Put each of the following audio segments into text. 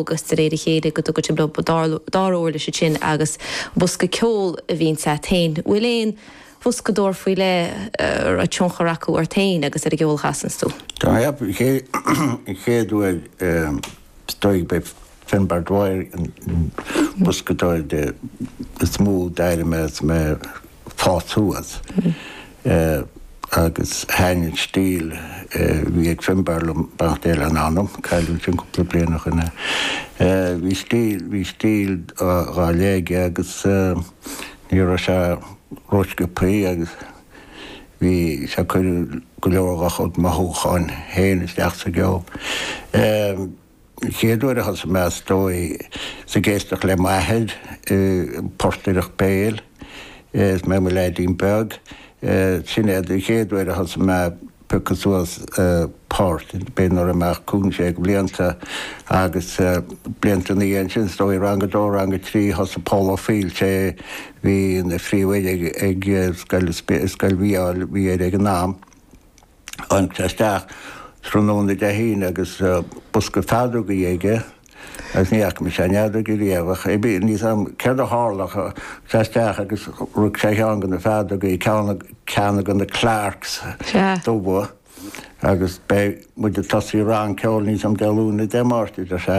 agus de réir a chéile go dtugann sibh leo dara uirlis ansin agus bosca ceoil a bhíonns agat féin. Bhfuil aon bhoscadóir faoi leith a raibh tionchar acu ort féin agus ar an gceol a chasanns tú? Tá an chéad uair is dóigh b'é Finbar Dwyer an boscadóir is mó d'éist mé leis is mé fás suas agus thaitin an stíl a bhí ag Finbarr liom beannacht Dé lena anam cailleadh ansin cúpla bliain ó shoin é. Bhí stíl bhí stíl ar leith aige agus ní raibh sé rósciobthaí agus bhí sé ag cur go leor dhá chuid mothúcháin féin isteach sa gceol. chéad uair a thosaigh mé is dóigh is ag éisteacht le m'athair ag portaireacht béil is mé i mo leaidín beag. Sin é an chéad uair a thosaigh mé ag piocadh suas poirt, b'fhéidir nuair a bhí mé cúig, sé bliana agus blianta ina dhiaidh sin is dóigh rang a dó, rang a trí thosaigh Pól Ó Foighil, sé bhí ina phríomhoide ag scoil, scoil Mhícheáil Uí Eire ag an am. tháinig sé isteach tráthnóna Dé hAoine agus bosca feadógaí aige agus ní fhaca mise aon fheadóg riamh ach bhí, níl a fhios 'am céard a tharla ach tháinig sé isteach agus rug sé ar cheann de na feadógaí, ceann, ceann de na Clarks dubha agus beidh muid ag tosaí rang ceoil níl a fhios 'am Dé Luain nó Dé Máirt a deir sé.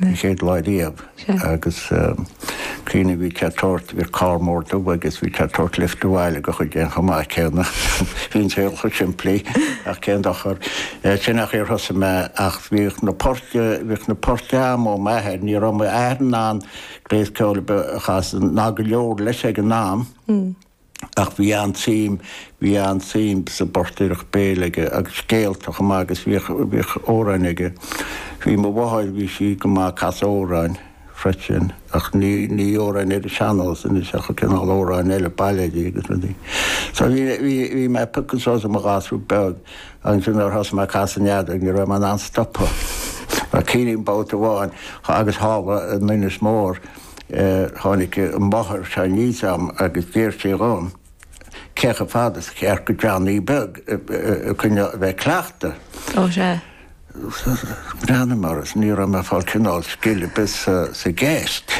An chéad lá riamh agus cuimhním bhí sé ag tabhairt, bhí carr mór dubh agus bhí sé ag tabhairt lift abhaile go chuid againn chomh maith céanna. Bhí an saol chomh simplí ach cén dochar. Sin an chaoi ar thosaigh mé ach bhíodh na poirt, bhíodh na poirt a'm ó m'athair, ní raibh m'athair in ann gléas ceoil a chasadh, ná go leor leis ag an am. Ach bhí an-tsuim, bhí an-tsuim sa bportaireacht béil aige agus scéalta chomh maith agus bhíodh, bhíodh amhráin aige. Bhí mo mháthair, bhí sí go maith ag casadh amhráin freisin ach ní, ní amhráin ar an sean-nós anois ach cineál amhráin eile, bailéidí agus rudaí. So bhí, bhí, bhí mé ag piocadh suas i mo ghasúr beag agus nuair a thosaigh mé ag casadh an fheadóg, ní raibh mé in ann stopadh. Ach cuimhním babhta amháin agus tharla in Inis Mór, Tháinig an mháthair aníos a'm agus d'iarr sí dhom cé chomh fada is ceart go Johnny Beag a choinneáil a bheith ag cleachtadh. Ó sea. Bhreathnaigh mé uirthi is ní raibh mé ag fáil cineál scil ar bith sa gceist.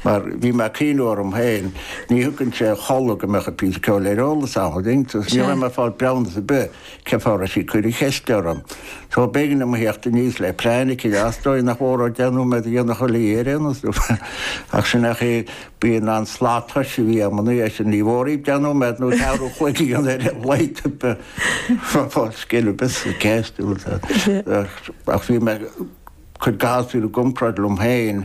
Mar bhí mé ag cuimhneamh orm féin, ní thiocfainnse a chodladh go mbeadh an píosa ceoil ar eolas agam, an dtuigeann tú, so ní raibh mé ag fáil breabhnas ar bith. Cén fáth a raibh sí ag cur na ceiste orm? So, b'éigean liom a theacht aníos le plean eicínt. Is dóigh nach mór dó deich nóiméad a dhéanfadh chuile oíche, nó sin, ach sin ach é, bíonn an slat tomhais a bhí agam an oíche sin, ní mór duit deich nóiméad nó ceathrú an chloig a dhéanamh ar a laghad, fág scil ar bith sa cheist. Ach bhí mé ag cur gasúir i gcomparáid liom féin.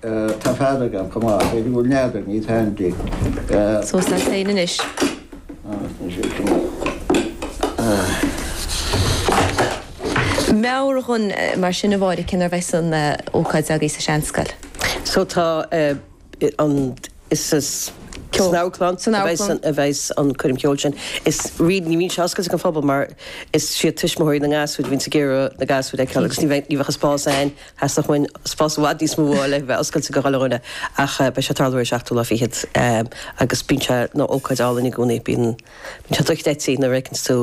Tá fead agam, chomh maith. B'fhéidir go bhfuil nead ag Naomh Taimdí. Suas leat féin anois. Meabhar dhom mar sin a Mháire cén uair a bheas an ócáid agaibh sa seanscoil. So tá, is san amharclann a bheas an choirm cheoil sin. Is really ní bhíonn sé oscailte don phobal mar is siad tuismitheoirí na ngasúir a bhíonns ag iarraidh na gasúir a fheiceáil agus ní bheadh an spás againn. Theastódh uainn spás i bhfad níos mó le bheith oscailte go gach duine ach beidh sé ag tarlú ar an 7ú lá fichead agus bíonn sé ina ócáid álainn i gcónaí. Bíonn sé dochreidte nuair a fheiceanns tú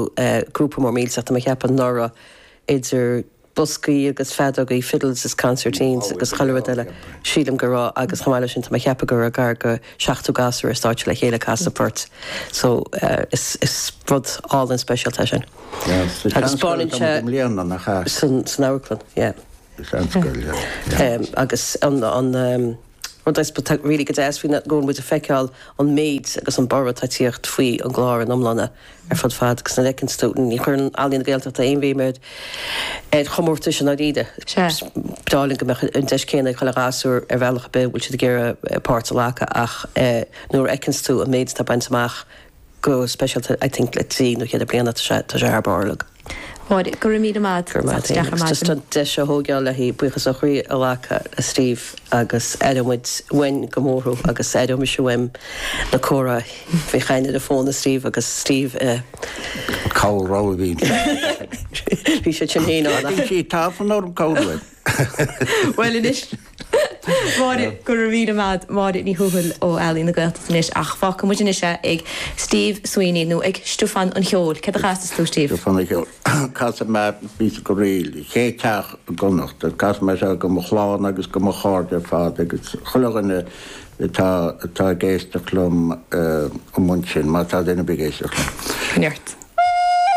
grúpa mór millteach. Tá mé ag ceapadh anuraidh idir boscaí agus feadógaí, fiddles is concertines agus chuile rud eile sílim go raibh agus chomh maith le sin tá mé ag ceapadh go raibh gar go 70 gasúr ar stáitse le chéile ag casadh poirt so is rud álainn speisialta é sin. Agus beidh sé san amharclann, yeah. Seanscoil, yeah. Agus an rud atá really go deas faoi go bhfuil muid ag feiceáil an méid agus an borradh atá ag tíocht faoi an gclár in iomláine ar fad fad agus nuair a fheiceann tú, ní chuireann Ealaín na Gaeltachta aon bhéim ar ar chomórtais i ndáiríre. Ba mhaith linn go mbeadh an deis céanna ag chuile ghasúr ar bhealach ar bith a bhfuil siad ag iarraidh páirt a ghlacadh ach nuair a fheiceann tú an méid atá bainte amach, go speisialta I think le trí nó cheithre bliana tá sé tá sé thar barr like. Máire, Go raibh míle maith Go raibh maith Is deas an. deis a thógáil le haghaidh buíochas ó chroí a ghlacadh le Steve agus aireoidh muid uainn go mór thú agus aireoidh mise uaim na comhráití, bheith ag caint ar an fón le Steve agus Steve i Cabhail rabhaidh bhí. Bhí siad sin fhéin ann. Bhí sí tafann orm cabhail. Bhuel anois, Máire, go raibh míle maith, Máire Ní Thuathail ó Ealaín na Gaeltachta anois ach fágfaidh muid anois é ag Steve Sweeney nó ag Stiofán an Cheoil. Céard a chasas tú, Steve? Stiofán an Cheoil. Casfaidh mé píosa go réidh, an chéad teach i gConnachta. Casfaidh mé seo do mo chlann agus do mo chairde ar fad agus chuile dhuine atá atá ag éisteacht liom amuigh ansin, má tá duine ar bith ag éisteacht liom. Neart.